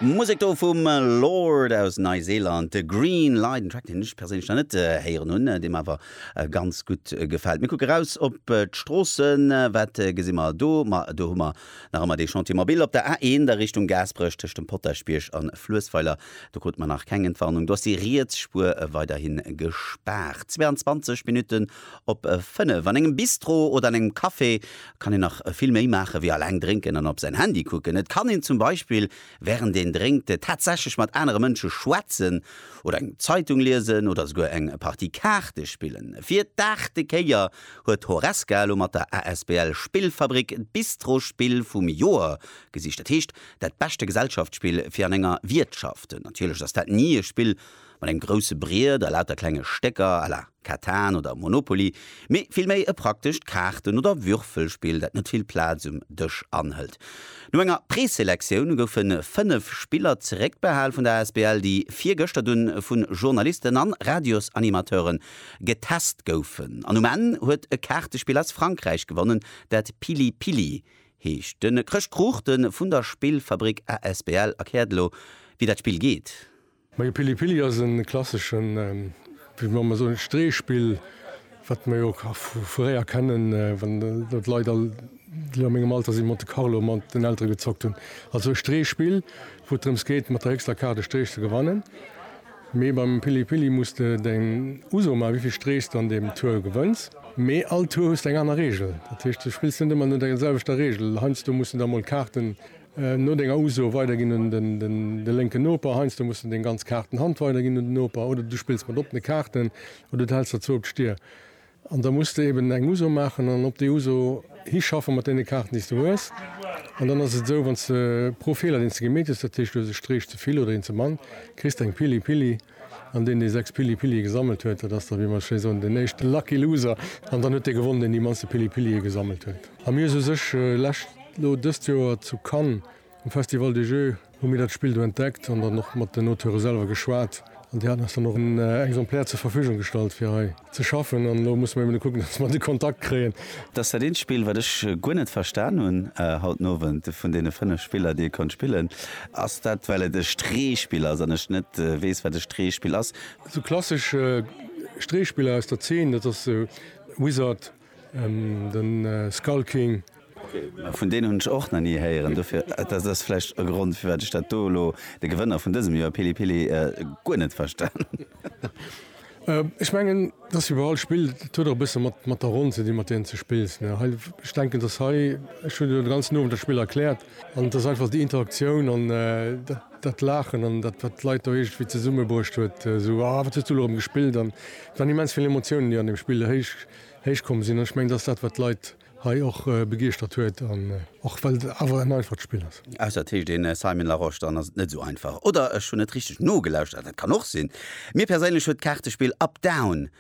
Musek do vum Lorde aus Neiseeland, Green Light, en Track deen ech perséinlech nach net héieren hunn, dee mer awer ganz gutt gefält. Mir kucke raus op d'Stroossen, wat gesi mer do? Ma do hu mer nach ëmmer dee Chantier mobile op der A1 a Richtung Gaasperech tëscht dem Potaschbierg an Fluessweiler. Do krute mer nach keng Entwarnung, do ass déi riets Spuer weiderhi gespaart. 22 Minutten op 5. An engem Bistro oder an engem Café kann een nach vill méi maachen, wéi alleng drénken an op säin Handy kucken. Et kann een zum Beispill während een drénkt tatsächlech mat anere Mënsche schwätzen oder eng Zeitung liesen oder souguer eng Partie Kaarte spillen. Fir d'aachte Kéier huet Horesca elo mat der asbl Spillfabrik d'Bistro-Spill vum Joer gesicht, dat heescht dat beschte Gesellschaftsspill fir an enger Wiertschaft. Natierlech ass dat ni e Spill mat engem grousse Briet a lauter klenge Stécker à la. Catan oder Monopoly, mee villméi e praktescht Kaarten oder Würfelspill, dat net vill Plaz um Dësch anhëlt. No enger Preselektioun goufe 5 Spiller zeréckbehal vun der asbl, déi virgëschter dunn vu Journalisten an Radiosanimateure getest goufen. An um Enn huet e Kaartespill aus Frankräich gewonnen, dat Pili Pili heescht. De Chrëscht Kruchten vun der Spillfabrik asbl erkläert elo, wéi dat Spill geet. Majo Pili Pili ass en klasseschen, wéi mer ëmmer soen, Streespill, wat mer jo vu fréier kennen, wann do d'Leit all, déi a mengem Alter sinn, Monte Carlo mat den Elteren gezockt hunn. Also e Streespill, wou et drëms geet, mat der héchster Kaart e Streech ze gewannen. Mee beim Pili Pili muss de deng Uso maachen, wéivill Streech s de an deem Tour gewënns. Mee all Tour hues de eng aner Reegel. Dat heescht, du spills net ëmmer no der selwechter Reegel. Heiansdo muss de da mol Kaarten. No denger Uso weider ginn un de lénken Noper. Heiansdo muss de deng ganz Kaarten Hand weider ginn un den Noper, oder du spills mat oppene Kaarten, oder du häls der zwou op d'Stier. An da muss de eben eng Uso maachen an op déi Uso hischaffe mat deene Kaarten, déi s de hues. An dann ass et esou, wann s de pro Feeler, deen s de gemeet hues, dat heescht, du hues e Streech ze vill oder een ze mann, kriss de eng Pili Pili. An deen, dee sechs Pili Pilie gesammelt huet, dat ass da, wéi mer esou schéi soen, den éischte Lucky Loser. An dann huet dee gewonnen, deen déi mannste Pili Pilie gesammelt huet. A mir hu se u sech lescht. Lo dëst Joer zu Cannes um Festival des Jeux hu mir dat Spill do entdeckt an dann och mat den Auteure selwer geschwat an déi haten eis dann och en Exemplaire zur Verfügung gestallt fir hei ze schaffen an lo musse mir eben kucken, dass mer de Kontakt kréien. Dat ass dat eent Spill, wat ech guer net verstan hunn haut den Owend. Vun deene fënnef Spiller, déi ee konnt spillen, ass dat, well et e Streespill ass an ech net weess, wat e Streespill ass. Esou klassesch Streespiller aus der Zeen, dat ass Wizard. Den Skull King. Vun deenen hunn ech och nach ni héieren, dofir dat ass vläicht e Grond firwat ech dat do elo, de Gewënner vun dësem Joer, Pili Pili, guer net verstanen hunn. Ech mengen et ass wéi bei all Spill, et huet och e bësse mat der Ronn ze dinn mat där s de spills. Ech denken dass hei, ech hunn elo de ganzen Owend dat Spill erkläert, An et ass einfach déi Interaktioun an dat Laachen an dat, wat d'Leit do iergendwéi zesummebruecht huet, esou, Ah, wat hues du elo erëm gespillt? An et waren immens vill Emotiounen, déi an deem Spill héich komm sinn. An ech mengen, dat ass dat, wat d'Leit hei och begeeschtert huet, och well et awer en einfacht Spill ass. Ausser et heescht ee Simon Larosche, dann ass et net esou einfach. Oder ech hunn net richteg nogelauschtert, dat kann och sinn. Mir perséinlech huet d'Kaartespill Up Down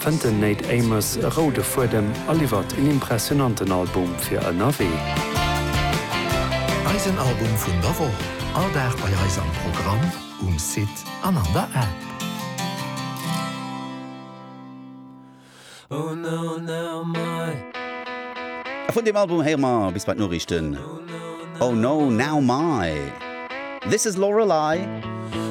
Fënnt den Nate Amos e roude Fuedem a liwwert en impressionanten Album fir ënnerwee. Eisen Album vun der Woch, all Dag bei eis am Programm, um Site an an der App. A vun deem Album héiere mer bis bei d'Noriichten Oh No Now My This Is Lorelei.